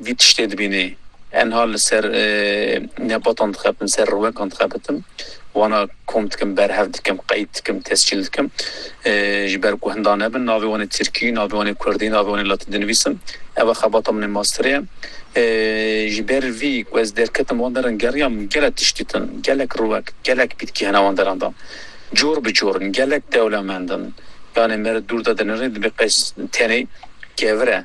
Vî tiştê dibînê. Enha li ser nebatan dixebtim, li ser riwekan dixebitim. Wana kom dikim, berhev dikim, qeyd dikim, tescîl dikim. Ji ber ku hinda nebin navê wan ê tirkî, navê wan ê kurdî, navê wan ê latîn dinivîsim. Ev e xebata min ê masterê ye. Ji ber vî ku ez derketim wan deran geriya min gelek tişt dîtin. Gelek riwek, gelek pîtkî hene wan deran de. Cor bi cor in, gelek dewlemend in. Yanê mere dûr de dinirê dibê qey tenê kevir e.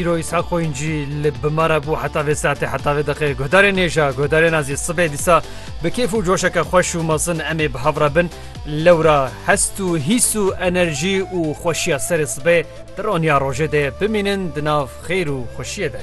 Îro Îshak Xoyuncî li bi me re bû heta vê saetê heta vê deqê. Guhdarê nêja, guhdarê nazî sibê dîsa bi kêf û coşeke xweş û mezin em ê bi hev re bin. Lewra hest û hîs û enerjî û xweşiya serê sibê di roniya rojê de bimînin di nav xêr û xweşiyê de.